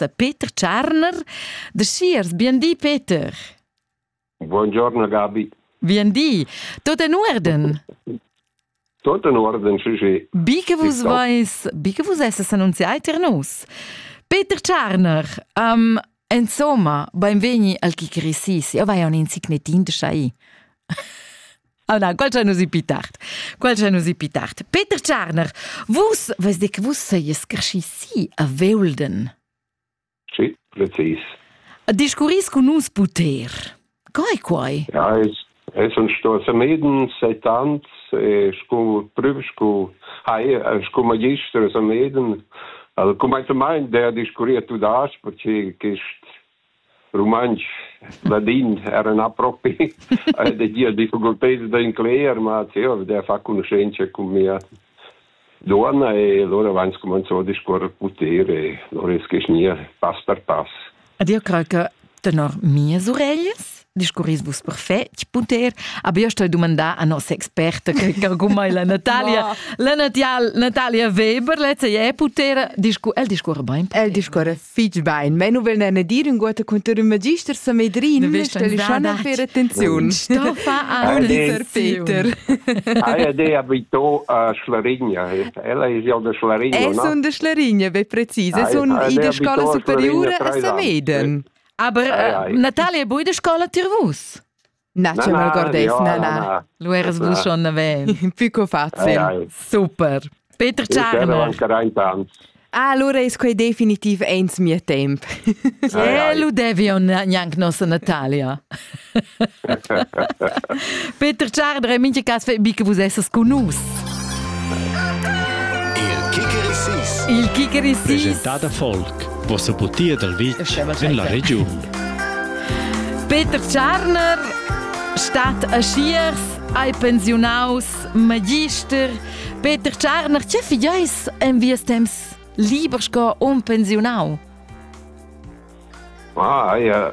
da Peter Tscharner. Da Schiers, biendì Peter. Buongiorno Gabi. Biendì. Tot in Urden. Tot in Urden, sì, sì. Bi che vus vais, bi che vus esses annunziai ter nus. Peter Tscharner, um, insomma, beinvegni al Kikirissis. Io vai a un insignetin de schai. Auna, qual c'è nusi pi tard? Qual c'è nusi pi tard? Peter Tscharner, vus, vus de che vus seies carschi si a Veulden? Sì, precis. Discurris con nus puter. Co è quai? Ja, es, es un sto Sameden seit ans, e scu prüf, scu, hai, scu magister a Sameden, al cum mai der discurriert tu das, perché quist rumantsch ladin era na propi ed gia difficulteds d'incler ma zeva der fa conoscenza cun mia duonna e lura avans comenzò a discuorrer puter e lura es nia pass per pass. Ed eu craj che tenor mias ureglis discurris vus perfet puter aber io sto domandar a nos experta che cargumai la Natalia la Natalia Natalia Weber lezza è puter discu el discorre bein el discorre fitch bein menu will ne dir un guata conter un magister sa medrin schon per attenzione sto fa a Peter Aia de abito a Schlarigna ella è ja de Schlarigna es un de Schlarigna be präzise sun in de scola superiore a Sameden Aber äh, Natale è bui de scola tir vus? National Gordeis, na, na. Lu eras vus schon naven. Pico facile. Super. Peter Czarner. Ah, allora è quei definitiv ens mio temp. E lu devi un neanche nostra Natalia. Peter Tscharder e mincha cas fai bi che vus essas con nus. Il Kicker Issis. Il Kicker Issis. Presentada Volk, vossa butia dal vitg en la regiun. Peter Tscharner stat a Schiers, hai pensionaus magister. Peter Tscharner, che fideis en vies temps liber sco un pensionau? Ah, ja,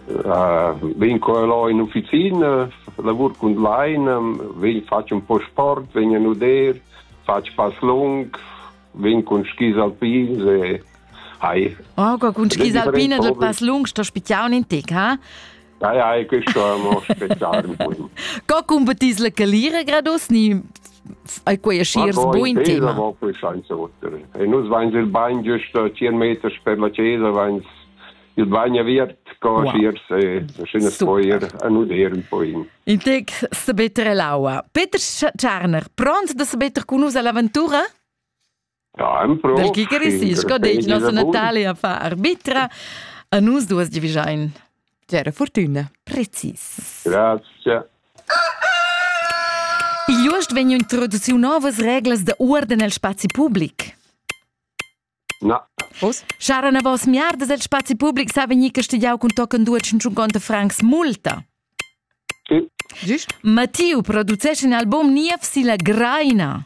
uh, vegn qua là in officina, lavur cun laina, vegn faccio un po' sport, vegn a nuder, faccio pass lung, vegn cun skis alpins e hai. Oh, con skis alpine del pass lung sto spiziar un in tec, ha? Nei ei questo mo spezial bun. Co competis la calira gradus ni ai quei schiers buin tema? Ma poi senza otter. E nus vains il bagn giusto 100 meters per la chiesa, vains il bagn aviert co wow. schiers e schönes poier a nuder un po in. In tec sabetter l'aua. Peter Tscharner, pront da sabetter con nus all'aventura? Dal chi caress il scodetg nossa Natale a far arbitra? A nus duas givigiain. C'era fortuna, precis. Grazie. Igl uost vegn introduciu novas reglas da uorden el spazi public. Na. Vos? Chara na vos miardas el spazi public sa vegnir castigiau cun tochen 250 francs multa. Sì. Giust? Mattiu producesch in album niev si la Graina.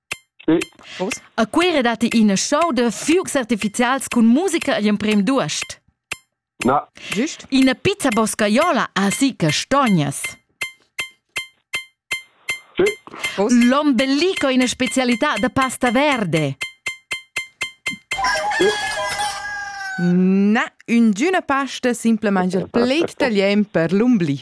A Cuira datti ina show da fuocs artificials cun musica egl emprem d'uost. Na. Giust? Ina pizza boscaiola ha gì castognas. Sì. L'ombelico è una specialità da pasta verde. Na, üngüna pasta simplamaing il pled italian per l'ombli.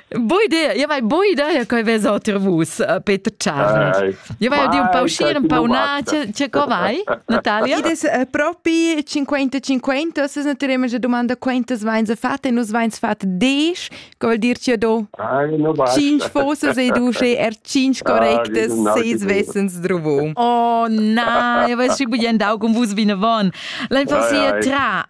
Voi dir, io vai boi da ja coi vez otir vus, eh, Peter Czarner. Io vai di un pa uscire, un pa una, c'è co vai, Natalia? Id es eh, propi 50-50, ossas naturem že domanda quantas veins fat e nus veins fat 10, co vuol dir cio do? Cinc fosas e du še er cinc correctes, seis vessens druvo. Oh na, io vais schi bugen dau con vus vine von. La infancia tra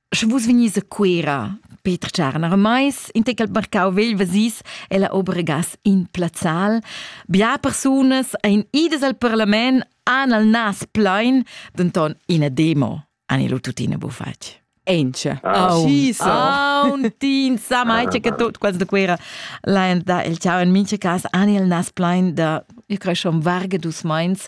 Sche vus vegnis a Cuera, Peter Tscharner mais, in tec al marcau vegl vesis ella obregas in plazzal. Bia persunas ein idas al parlament han al nas plein, denton ina demo han lu tuttina bufatg. Ence. Auntin sa mai che tut quels de Cuera laen da il ciao in mince cas ani il nas plein da io creschon varge dus meins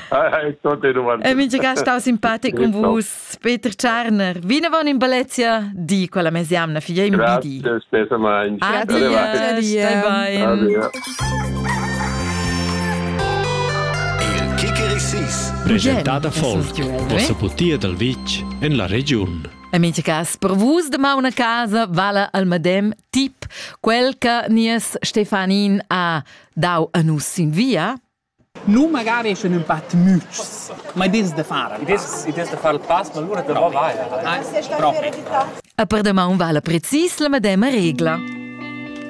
E mintga stau simpatic cun vus, Peter Tscharner. Vinavon in Balezia, di quella mesiamna, figlia in bidi. Adi, adi, adi. Il Kikerisis, presentada folk, vossa putia dal vitg en la regiun. E mincha cas, per vus da mauna casa vala al medem tip quel che nies Stefanin ha dau a nus sin via? Nu magari sche ün pat mütschs, ma i dess da far al I dess i dess da far il pass, ma lura davo vaila. Ah, propi. E per damaun vala precis la medema regla.